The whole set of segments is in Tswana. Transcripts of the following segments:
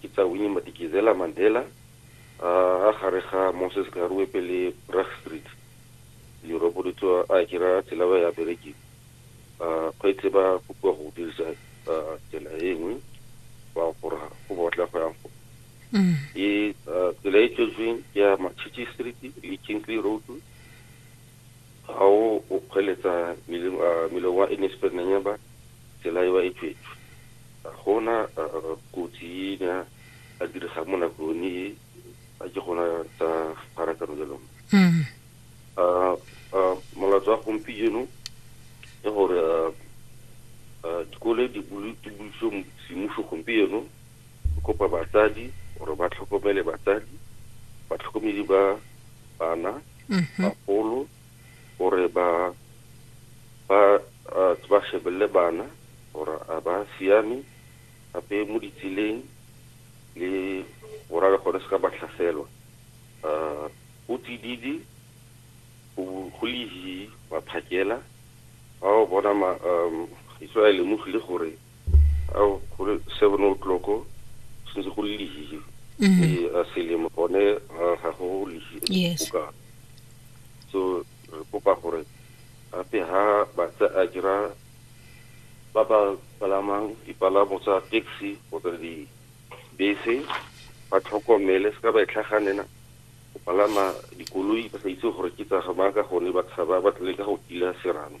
Ke tsa Winnie Madikizela Mandela, a a gare ga Moses Karue pele Bragg Street, leroboro le tsoa a kira tsela ba ya berekeng. A kgweetse ba kopiwa go dirisa tsela e nngwe ba gora go botla go yang go. E tsela e tswetsweng ke ya Machichi Street le Kingsley Road. Ga o o kgweletsa meleng wa Enesperenanyaba tsela ewa e tswetswe. Ga go na kotsi e e ne ya direga mo nako yone e a ke gona tsa pharakano ya lona. Molato wa gompieno ke gore dikole di bulitswe semmuso gompieno, re kopa batsadi gore ba tlhokomele batsadi, batlhokomedi ba bana. mhm. bagolo gore ba ba ba shebelele bana gore a ba siame gape mo ditseleng le gore le gone se ka ba tlhaselwa um o tsididi go lehi maphakela ba o bona um iso a lemogile gore ao go le seven o'clock se ntse go le lehile mm-hmm. ee a selemo gone ga go lehile go ka so re kopa gore gape ha batsa a dira ba ba palamang dipalamo tsa taxi kgotsa dibese ba tlhokomele se ka ba e tlhaganela go palama dikoloi ba sa itse gore ke tsa gamaka gone ba tshaba ba tlele ka go kila serame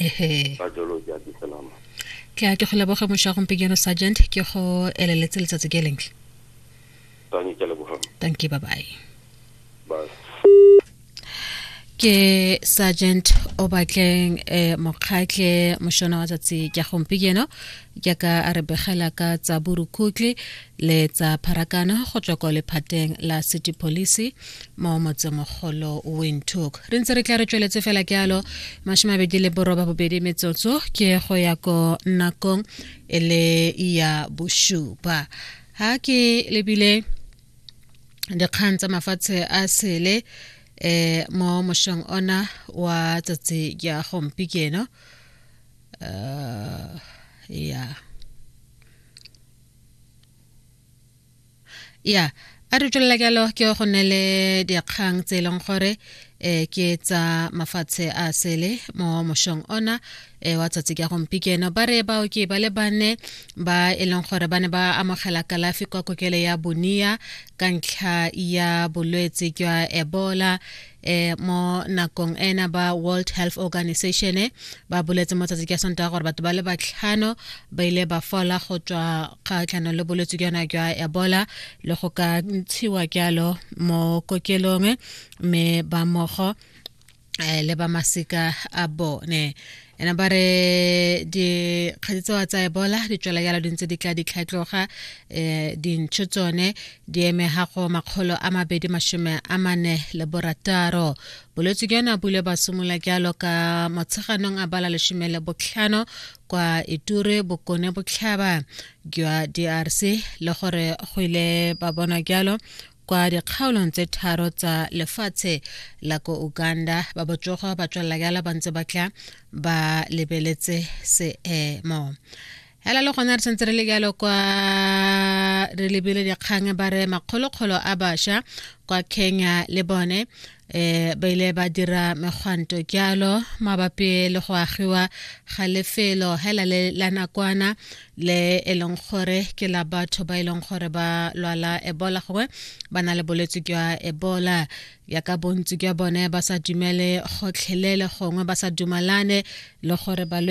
ehe ka jalo ke a ke selama ke a ke go leboge mosha gompieno sergeant ke go eleletse letsatsi ke lentle tanye ke lebogang thank you bye bye bye ke sergeant o batleng um eh, mokgatlhe mošona wa tsatsi ke gompieno jaaka a re begela ka tsa borukhutlhi letsa pharakano go tswa kwa lephateng la city police mo motsemogolo windhoek re ntse re tla re tsweletse fela ke alo mashimabedi le boroba bobedi metsotso ke go ya ko nakong e le ya bosupa ha ke lebile dikgang tsa mafatshe a sele eh mo moshong ona wa tsatsi ya gompikeno uh, eh, yeah ya a re tswelela jalo ke go ne le dikgang tse e leng gore um ke tsa mafatshe a sele mo mošong ona um wa tsatsi ka gompikeno ba re baoki ba le bane ba e leng gore ba ne ba amogela kalafi kwa kokelo ya bonia ka ntlha ya bolwetse jwa ebola eh mo nakong ena ba World Health Organization eh, ba boletse mo tsatsi ke sonta gore batho ba le batlhano ba ile ba fola go tswa kgatlhano le bolwetse ke yona jwa Ebola le go ka ntshiwa jalo mo kokelong eh, mme ba mogo eh, le ba masika a bone ena ba re dikgadi tsewa tsa ebola di tswela jalo dintse di tla ditlhatloga um dintšho tsone di eme ga go makgolo a mabedi masome a mane le borataro bolwetse ke yone a bule ba simolola jalo ka motsheganong a bala lesome le botlhano kwa iture bokone botlhaba jwa drc le gore go ile ba bonwa jalo kwa dikgaolong tse tharo tsa lefatshe la ko uganda ba botsogo ba tswelela jala ba ntse ba tla ba lebeletse seemo hela le gona re santse re le jalo kwa re lebile dikgang ba re makgolokgolo a basha kwa kenya le bone eh ba ile ba dira megwanto kyalo mabapi le go agiwa ga lefelo hela le la nakwana le e leng gore ke la batho ba e leng gore ba lwala ebola gongwe ba na le bolwetse jwa ebola ya ka bontsi jwa bone ba sa dumele gotlhelele gongwe ba sa dumalane le gore balwetse